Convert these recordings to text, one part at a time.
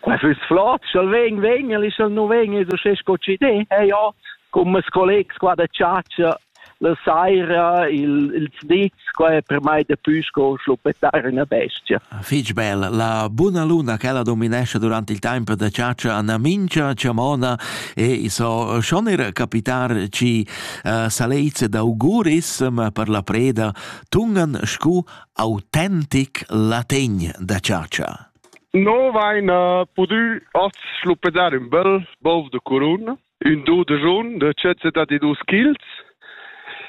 Quei füss flot, sch'el vegn, vegn, el sch'el nu vegn, es uschè sco chi di. E jo, con mes collegs qua da chatscha, la saira, il, ils dits, qua è per mai dapü sco schluppettare una bestia. Fich bel. La buna luna che la dominesce durante il tempo da ciaccia Anna Mincha, Ciamona e i so schonir capitar ci uh, saleizze d'auguris, ma per la preda tungan scu autentic lategn da ciaccia. No vain pudü hoz schluppedar ün bel bov da curun, ün do da jun da tschet settantadus kils.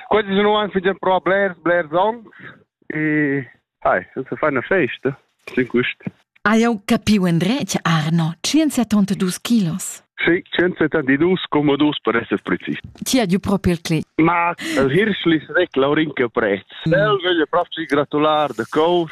Quels nu han fingià prò blers, blers ans e hai, es a far 'na festa sün quist. Ha jau capiu endretg, Arno, 172 kilos? Sì, 172,2 per esser prezis. Ti hai giu propi il clic. Ma el hirschlis rec laurinca prezs. Mm. El veglia proprio gratular da cous.